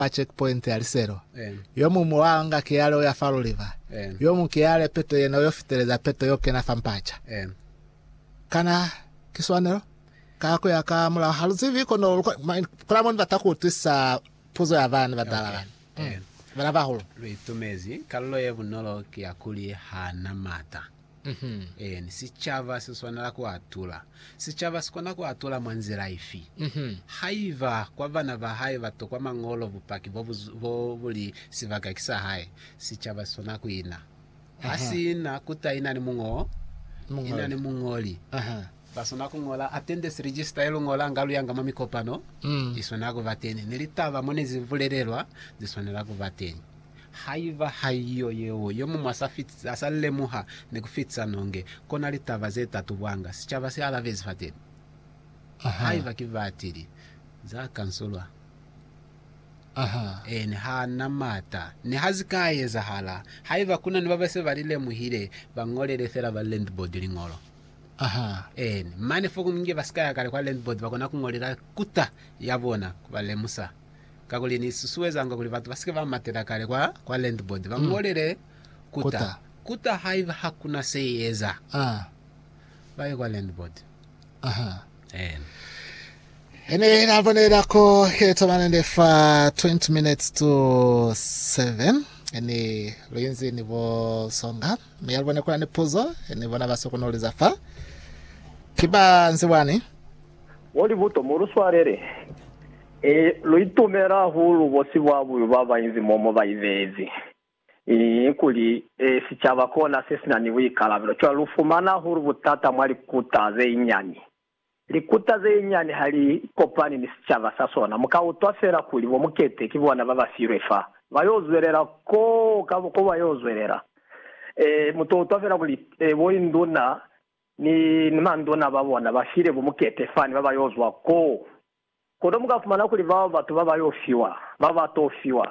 pa checkpoint ya Liselo, yomuñwi wa nga kiale uya fa Luliva, yomuñwi kiale peto yena uyo fiteleza peto yo kena fa Mpacha. Kana ki swanelo? Ka kuya ka mulao haluzivi kono kola moni bata kuutwisisa puzo ya bana badala bani. Bana bahulu. Luitumezi kalulo ye bunolo ki ya kuli hana mata. Eeni, sicaba si swanela ku atula. Sicaba si kona ku atula mwa nzila ifi? Haiba kwa bana ba hae ba tokwa Mañolo bupaki bo bo bu li sibaka ki sa hae, sicaba si swanela ku ina. Ha si na ku taina ni muñoli. Ba swana ku ñola attendance register ye lu ñolanga lu yanga mwa mikopano, i swanela ku ba teñi, ni litaba mo ne zi bulelelwa zi swanela ku ba teñi. Haiba haiyo yeo, yo muñwi a sa lemuha ni ku fitisa nonge, kona litaba ze ta tubwanga, sicaba si alabezi fateni. Haiba ki batili za kansulwa, ene ha na mata. Niha zi ka ezahala, haiba ku na ni ba ba se ba li lemuhile, ba ñolele fela ba landboard liñolo. Ahaa. Eeni. Mane fo kunge ba si ka ya kale kwa landboard ba kona ku ngolela kuta ya bona ku ba lemusa. Kakuli ni susuezanga kuli batu ba si ke ba matela kale kwa, kwa landboard ba ngolele kuta. Kuta. Kuta haiba ha ku na se i eza, Ah. ba ye kwa landboard. Ahaa. Eeni. He ne na bonela ko he tomane le fa 20 minutes to 7 ene lo inzi ni bo songa Mi alubo ne kuna ni puzo ni bona ba sokonoliza fa. Ki ba nzi wani? Bo Libuto, mu lu swalele. I, lu itumela hahulu bo sibwabuyu ba ba inzi mo mo ba ibeezi. I, kuli, e, sicaba kona se si na ni buikalabelo. Cwale lu fumana hahulu butata mwa likuta ze inyani. Likuta zenyinyani ha li kopani ni sicaba sa sona, mu ka utwa fela kuli bo Mukete ki bona ba ba filwe fa. Ba yo zwelela ko, ka, ko ba yo zwelela. Ee, mu to utwa fela kuli, ee, bo induna ni, ni manduna ba bona ba file bo Mukete fani ba ba yo zwa ko. Kono mu ka fumana kuli bao batu ba ba yo fiwa, ba ba to fiwa,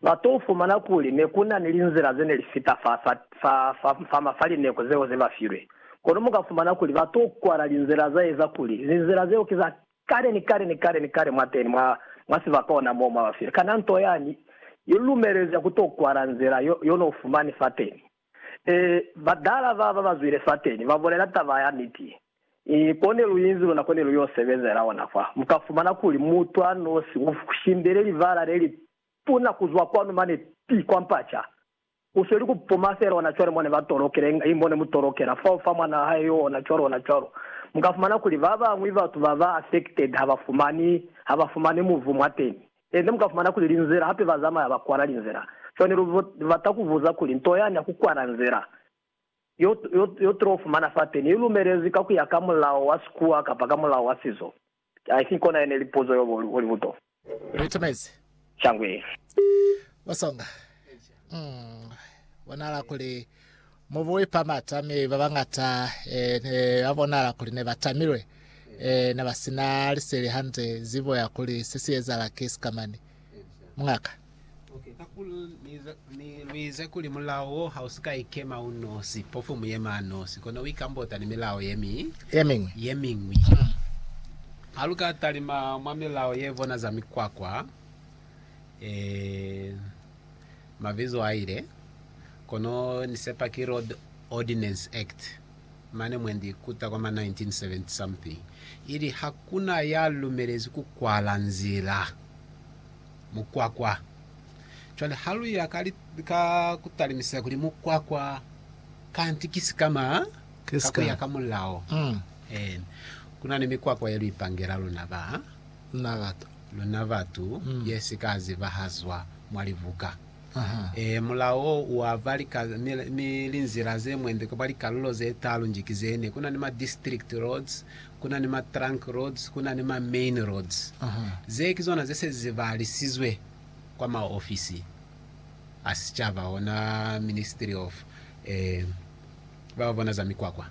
ba to fumana kuli ne ku na ni linzila ze ne li fita fa, fa, fa, fa, fa, fa lineku zeo ze ba filwe. Kono mu ka fumana kuli ba to kwala linzila za eza kuli linzila zeo ki za kale ni kale ni kale ni kale mwateni mwa, mwa sibaka ona moo mwa ba filwe. Kana nto yani i lu lumelezi ku to kwala nzila yo, yo no fumani fateni? Ee, batala ba ba bazwile fateni ba bulela taba ya niti. Ee, ko ne lu inzi luna ko ne lu yo sebezela ona fa. Mu ka fumana kuli mutu a nosi u shindele libala le li tuna ku zwa kwanu mane pi kwa mpaca. U sweli ku puma fela ona cwale mo ne ba tolokela, inga i mo ne mu tolokela fao fa mwana wa hae yo, ona cwalo, ona cwalo. Mu ka fumana kuli ba bañwi batu ba ba affected ha ba fumani, ha ba fumani muvu mwateni. Tende mu ka fumana kuli linzela hape ba zamaya ba kwala linzela. Cwani lu bata ku buza kuli nto yani ya ku kwala nzela yo, yo, yo tulo fumana fateni i lumelezwi ka ku ya ka mulao wa sikuwa kapa ka mulao wa sizo? I think kona yene li puzo yo bo li buto. Retumezi. Shangwe. Basonga. Mm, bonala kuli mubu wipa mata mi ba bangata eh, ne ba bonala kuli ne ba tamilwe eh, ne ba sina liseli hande zibo ya kuli se si ezala ki sikamani mungaka Okay, kakuli nize- ni- luize kuli mulao wo ha u si ka ikema u nosi, pofu mu yema a nosi, kono u ikambota ni milao ye mi ye miñwi ye miñwi. Ha lu ka talima mwa milao ye bona za mikwakwa, eh, Mabizo aile, kono ni sepa ki Road Ordinance Act mane mwendi kuta kwa ma 1970 something ili hakuna ya lumelezi ku kwala nzila, mukwakwa. Cwale ha lu ya ka, ka ku talimisela kuli mukwakwa kanti ki sikama ka ku ya ka mulao. Eena, kuna ni mikwakwa ye lu ipangela luna ba. Na lata. Luna batu ye si ka zibahazwa mwa libuka. Ee, mulao wo u aba lika, mi, mi linzila ze mwembe kapa likalulo ze talu nji ki zene. Ku na ni ma district roads, ku na ni ma trunk roads, ku na ni ma main roads. Ze ki zona ze se zi balisizwe kwa maofisi a sicaba, ona Ministry of, ee. ba ba bona za mikwakwa.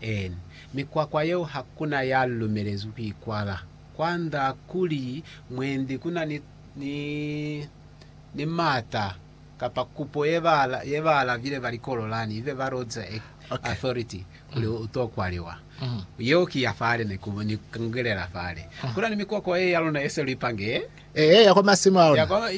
Eeni, mikwakwa yeo ha ku na ya lumelezwi ku i kwala. Kwa nda kuli mwendi ku na ni, ni, ni mata kapa kupo ye ba, ye baalabile ba likololani, ibe ba loza a, Okay. authority kuli u t'o kwaliwa. Yeo ki ya fale ne ku, ni kungelela fale. Ku na ni mikwakwa ye ya luna ye se lu ipange, Ee, ya kwa masimu a ya luna. kwa, ya